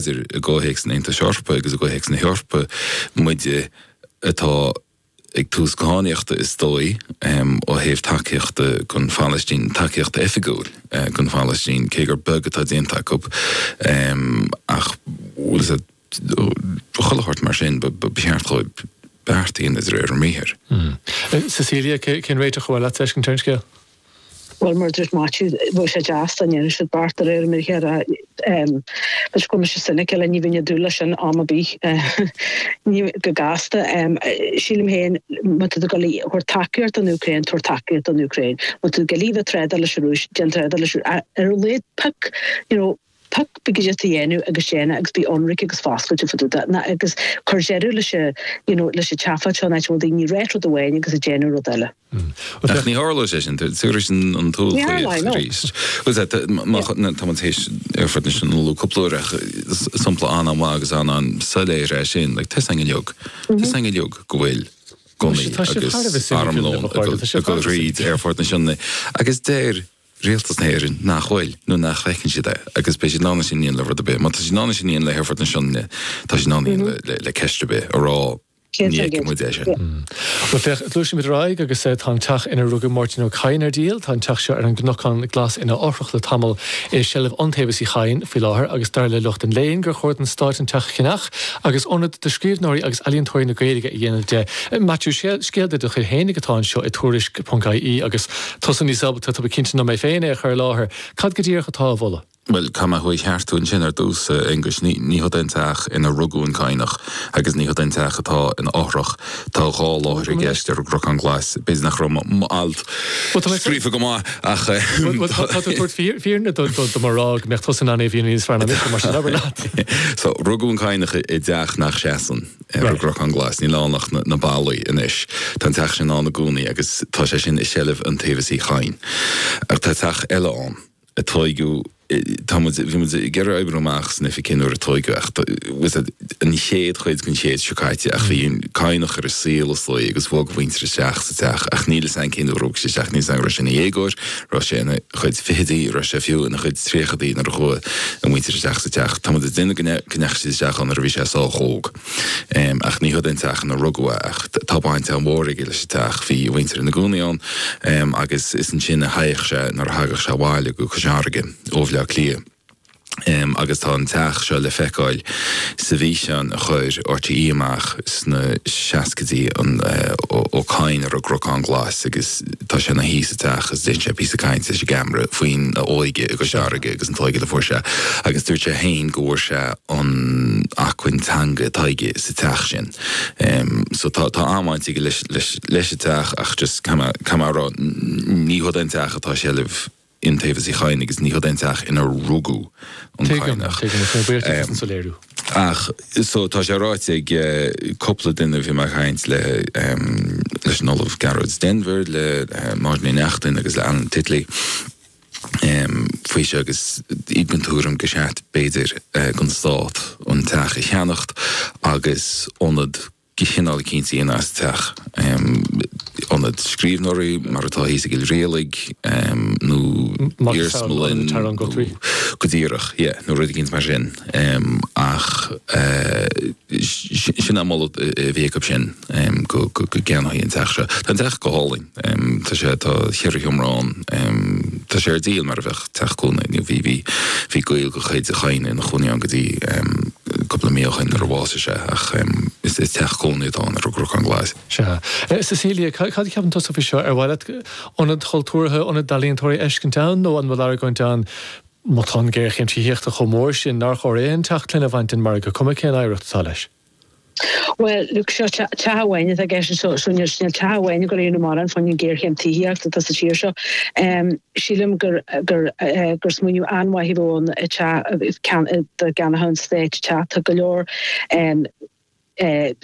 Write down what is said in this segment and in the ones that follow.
b'fhéidir i gcomhthéacs an Aontais Eorpaigh agus i gcomhthéacs na hEorpa, muide atá ag tús cadhnaíochta is dóigh ó thaobh tacaíochta gon Phalaistín, tacaíocht oifigiúil gon Phalaistín, cé gur beag atá déanta acu ach bhuel is é do chuile shórt mar sin ba cheart dhóibh beart a dhéanamh de réir a mbriathair. Cecilia, cén réiteach a bheadh leat fheiscint ar an scéal? Bhuel, mar a dúirt Maitiú, bheadh sé deas dá ndéanfadh siad beart de réir a mbriathar. Go bhfuil mise cynical, ní bheinn ag dúil leis sin am ar bith, ní go gasta. Sílim féin, má tá tú ag goil a thabhairt tacaíocht don Úcráin, tabhair tacaíocht don Úcráin. Má tá tú ag goil a bheith ag trádáil leis an Rúis, déan trádáil leis an Rúis, ar a laghad pick, you know, Pioc cibé rud atá tú a dhéanamh agus déan é agus bí ionraic agus foscailte fá dtaobh de, ná, agus cuir deireadh leis an, you know, leis an tseafóid seo in áit a bhfuil daoine ag ráit rud amháin agus ag déanamh rud eile. Ach ní tharlóidh sé sin, faraor an t-uathbhlaoisc arís. Bhuel, sea, tá, má, tá muid théis Aerfort na Sionainne a lua cúpla uair ach is sampla an-an-mhaith agus an-an-soiléir é sin, like, tá a fhios ag an domhan, tá a fhios ag an domhan go bhfuil gunnaí agus armlón ag dul thríd Aerfort na Sionainne agus deir, Rialtas na hÉireann nach bhfuil, nó nach bhfeiceann siad é, agus beidh siad in ann é sin a dhéanamh le rud ar bith. Má tá siad in ann é sin a dhéanamh le hAerfort na Sionainne, tá siad in ann é a dhéanamh le ceist ar bith, a rá ní fheiceann muid é sin. Bhuel, féach, gluaisimid ar aghaidh agus tá an teach inar rugadh Máirtín Ó Cadhain ar díol. Tá an teach seo ar an gCnocán Glas ina fhothrach le tamall, é i seilbh Iontaobhas Uí Chadhain faoi láthair agus dar le lucht an léinn gur chóir don Stát an teach a cheannach agus ionad do scríbhneoirí agus ealaíontóirí na Gaeilge a dhéanamh de. Maitiú, scéal de do chuid fhéinig atá anseo i Tuairisc. ie agus. tusa níos ábalta, tá mé cinnte, ná mé féin é a chur i láthair. Cad go díreach atá á mholadh? Bhuel, caithfidh mé thú a cheartú ansin ar dtús, a Aonghuis? Ní hiod é an teach inar rugadh an Cadhnach agus ní hiod é an teach atá in a fhothrach. Tá dhá láthair i gceist ar an gCnocán Glas. B'fhéidir nach raibh m'alt scríofa go maith ach tá. Tá tú ag tabhairt fírinne do mo ráiteas go mbeadh tusa in ann é a mhíniú níos fearr ná mise, mar sin, abair leat. So, rugadh an Cadhnach i dteach nach seasann. ar an gCnocán Glas. Níl ann ach na ballaí anois. Tá an teach sin ann i gcónaí agus tá sé sin i seilbh Iontaobhas Uí Chadhain. Ach tá teach eile ann a tóigeadh, tá muid, bhí muid ag iarraidh a oibriú amach san oifig cén uair a tóigeadh é ach tá, bhuel, an chéad chuid den chéad seo caite ach bhí an Cadhnach ar an saol 's léi agus bhog a mhuintir isteach sa teach ach níl 'fhios a'inn cén uair a bhog siad isteach, níl 'fhios a'inn an raibh sé ina dhéagóir, raibh sé in a chuid fichidí, raibh sé fiú in a chuid tríochadaí nuair a chuaidh a mhuintir isteach sa teach. Tá muid ag déanamh amach go ndeachaidh siad isteach ann nuair a bhí sé sách óg. Ach ní hiod é an teach in ar rugadh é ach tá baint an-mhór aige leis an teach. Bhí a mhuintir in a gcónaí ann agus is ansin a théadh sé nuair a thagadh sé abhaile go Cois Fharraige ó Bhleá Cliath. agus tá an teach seo le feiceáil sa bhfíseán a chuir RTÉ amach sna seascaidí, Ó Cadhain ar an gCnocán Glas agus tá sé ina shuí sa teach agus déanann sé píosa cainte leis an gceamara faoina óige agus a dearga agus an t-óige a fuair sé agus dúirt sé féin go bhfuair sé an acmhainn teangan atá aige sa teach sin. So tá tá an-bhaint aige leis leis leis an teach ach just cad am cad am a rá ní hiod an teach atá i seilbh Iontaobhas Uí Chadhain agus ní hiod an teach ina rugadh an Cadhnach. Tuigim, tuigim, is mé buíoch duit as an soiléiriú. Ach so tá sé ráite ag cúpla duine a bhí mé ag caint le, leis an Ollamh Gearóid Denvir, le Máirín Ní Neachtain agus le Alan Titley faoi seo agus iad den tuairim gur cheart b'fhéidir don Stát an teach a cheannacht agus ionad chineál eicínt a dhéanamh as an teach, ionad scríbhneoirí mar atá thíos i gCill Rialaig nó iarsmalann nó go díreach yeah nó rud eicínt mar sin ach sin an moladh a bhí acu sin go gceannófaí an teach seo. Tá an teach go hálainn. Tá sé, tá cheithre sheomra ann. Tá sé ar díol mar a bheadh teach cónaí. Bhí, bhí, bhí gaol de chuid an Chadhnaigh ina chónaí ann go dtí cúpla mí ó shin nuair a bhásaigh sé ach is teach cónaí atá ann ar an gCnocán Glas. Sea. Cecilia, cad a cheapann tusa faoi seo? Ar mhaith leat ionad chultúrtha, ionad d'ealaíontóirí a fheiscint ann nó an bhfuil argóint ann má tá an ghéarchéim tithíochta chomh mór sin nár chóir aon teach clainne a bhaint den margadh cuma cén oidhreacht atá leis? Bhuel, look, seo teach amháin atá i gceist anseo. So níl teach amháin ag éirí mall fán an géarchéim tithíochta atá sa tír seo. Sílim gur smaoineamh an-mhaith a bhí ann teach do cheannaithe an Stáit teach. Tá go leor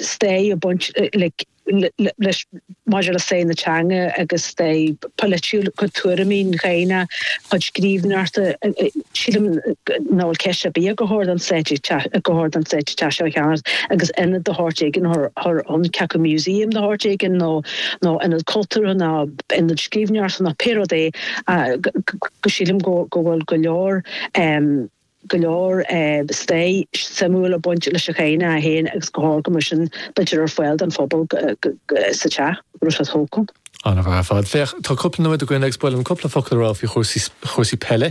stair ag baint, like, leis maidir le stair na teanga agus stair polaitiúil, a chuid tuairimí an Ghaeilge, a chuid scríbhneoireachta. Sílim nach bhfuil ceist ar bith ach gur cheart don Stát gur cheart don Stát an teach seo a cheannach agus ionad de shórt éigin an ceart go museum de shórt éigin nó nó ionad cultúrtha nó ionad scríbhneoireachta nó pé rud é go sílim go bhfuil go leor go leor stair suimiúil ag baint leis an gCadhnach é féin agus go háirithe mar sin bheadh ar fáil don phobal sa teach nuair atá tú acu. An-mhaith ar fad. Féach, tá cúpla nóiméad againn agus ba mhaith liom cúpla focal a rá faoi chúrsaí peile.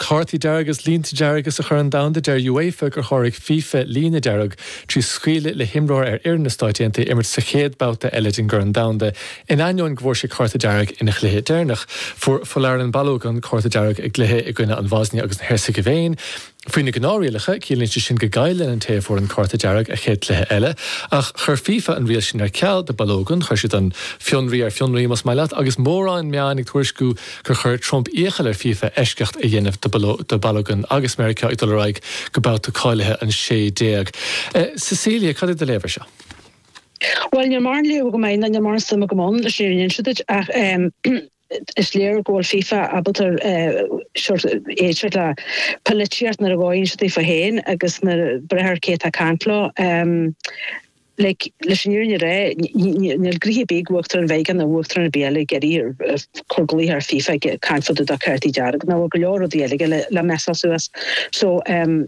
Cártaí dearga agus línte dearga sa Chorn Domhanda, deir UEFA gur sháraigh fifa líne dearg trí scaoileadh le himreoir ar fhoireann na Stát Aontaithe imirt sa chéad babhta eile den gCorn Domhanda In ainneoin go bhfuair sé cárta dearg ina chluiche deireanach, fuair Folarin Balogun an cárta dearg i gcluiche i gcoinne an Bhosnia agus an Heirseagaivéin. Faoi na gnáthrialacha, ciallaíonn sé sin go gcailleann an té a fuair an cárta dearg a chéad cluiche eile, ach chuir fifa an riail sin ar ceal do Balogun, chuir siad an fionraí ar fionraí, más maith leat, agus mórán meáin ag tuairisciú gur chuir Trump iachall ar fifa eisceacht a dhéanamh do Balogun agus Meiriceá ag dul ar aghaidh go babhta cáilithe an 16. Cecilia, cad é do léamh ar seo? Bhuel, níl mórán léamh agam air, ná níl mórán suim agam ann, leis an fhírinne a inse duit, ach is léir go bhfuil FIFA ábalta sórt éirí sórt polaitíocht nuair a fhóireann sé daofa féin agus ag brath ar cé atá ag caint leo. Like, leis an fhírinne a rá, níl gnoithe ar bith ag Uachtarán Mheiriceá ná Uachtarán ar bith eile ag iarraidh cur dlíthe ar FIFA ag caint fá dtaobh de chártaí dearg ná bhfuil go leor rudaí eile aige le messáil suas. So.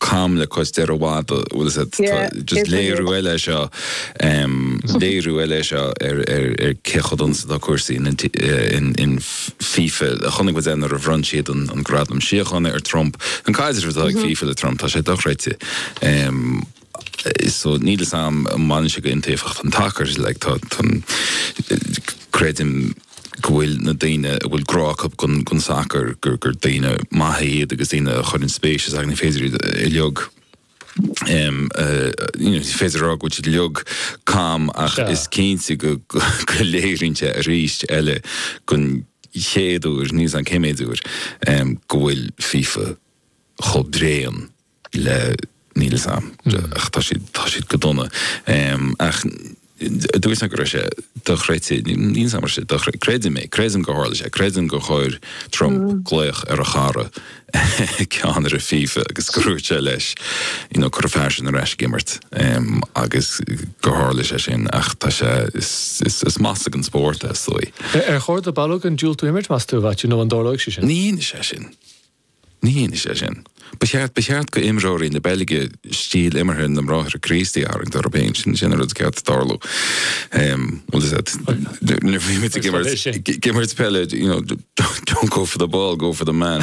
cam le cois deiridh mada bhfuil fhios a'd tá just léiriú eile é seo em léiriú eile é seo ar ar ar cé chomh dona is atá cúrsaí in in in FIFA chonaic muid é nuair a bhronn siad an an gradam síochána ar Trump an caidreamh atá ag FIFA le Trump tá sé dochreidte em so níl fhios a'm an mbaineann sé go hiontaofacht an tsacair like tá tá creidim go bhfuil na daoine a bhfuil grá acu don sacar gur daoine maithe iad agus daoine a chuireann spéis sa ní féidir a like ní féidir a rá go bhfuil siad uilig cam ach is cinnte go léiríonn sé arís eile don chéad uair níl fhios a'm cén méidiú uair go bhfuil fifa chomh bréan le níl 'fhios a'm ach tá siad tá siad go dona ach dúirt mé go raibh sé dochreidte níl sé dochreidte creidim é creidim gur tharla sé creidim gur chuir Trump glaoch ar a chara ceannaire fifa agus gur dhúirt sé leis you know cuir an fear sin ar ais ag imirt agus gur tharla sé sin ach tá sé is is is masla don spórt is dóigh. Ar chóir do Balogun diúltú imirt meas tú, Mhaitiú, nó an dtarlóidh sé sin? Ní dhéanfaidh sé sin. Ní dhéanfaidh sé sin. Ba cheart, ba cheart do imreoirí na Beilge stíl imeartha na mBráithre Críostaí a tharraingt orthu féin. Sin, sin an rud ba cheart tarlú. Bhuel is ait, nuair a bhímid ag imirt, ag imirt peile, you know, don't go for the ball, go for the man.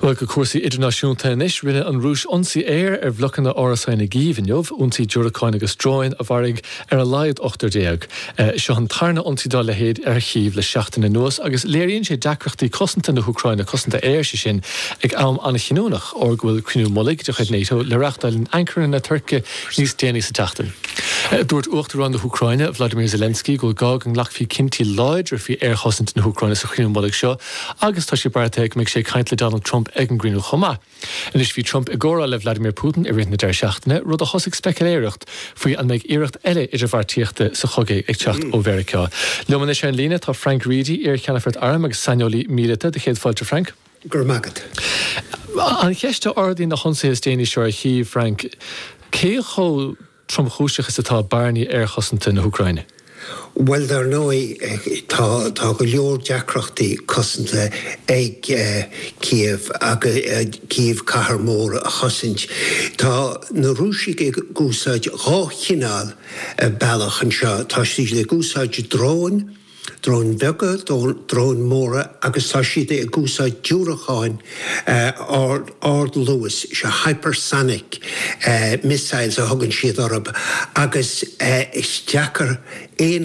Bhuel go cúrsaí idirnáisiúnta anois. Rinne an Rúis ionsaí aeir ar bhlocanna árasán i gCív inniu, ionsaí diúracáin agus dróin a mharaigh ar a laghad ochtar déag. Seo an tarna ionsaí dá leithéid ar Chív le seachtain anuas agus léiríonn sé deacrachtaí cosanta na hÚcráine, cosanta aeir, sé sin, ag am an-chinniúnach, óir go bhfuil cruinniú mullaigh de chuid NATO le reachtáil in Ankara na Tuirce níos déanaí sa tseachtain. Dúirt Uachtarán na hÚcráine, Volodymyr Zelensky go bhfuil gá go nglacfaí cinntí láidre faoi aerchosaint na hÚcráine sa chruinniú mullaigh seo. Agus tá sé beartaithe go mbeidh sé ag caint le Donald Trump ag an gcruinniú chomh maith. Anois bhí Trump i gcomhrá le Vladimir Putin i rith na deireadh seachtaine, rud a thosaigh speciléireacht faoi an mbeidh iarracht eile idirbheartaíochta sa chogadh ag teacht ó Mheiriceá. Liom anois ar an líne tá Frank Reidy, iar-cheannfort airm agus saineolaí míleata, do chéad fáilte Frank. Go raibh maith agat. An cheist a ardaíonn na hionsaithe is déanaí seo ar Chív, Frank, cé chomh. tromchúiseach is atá bearnaí aerchosanta na hÚcráine? Bhuel, dar ndóigh, tá, tá go leor deacrachtaí cosanta ag Kyiv agus Kyiv cathair mhór a chosaint. Tá na Rúisigh ag úsáid dhá chineál bealach anseo. Tá siad ag úsáid dróin. Dróin bheaga, dróin móra agus tá siad ag úsáid diúracáin ardluais, seo hypersonic missiles a thugann siad orthu agus is deacair aon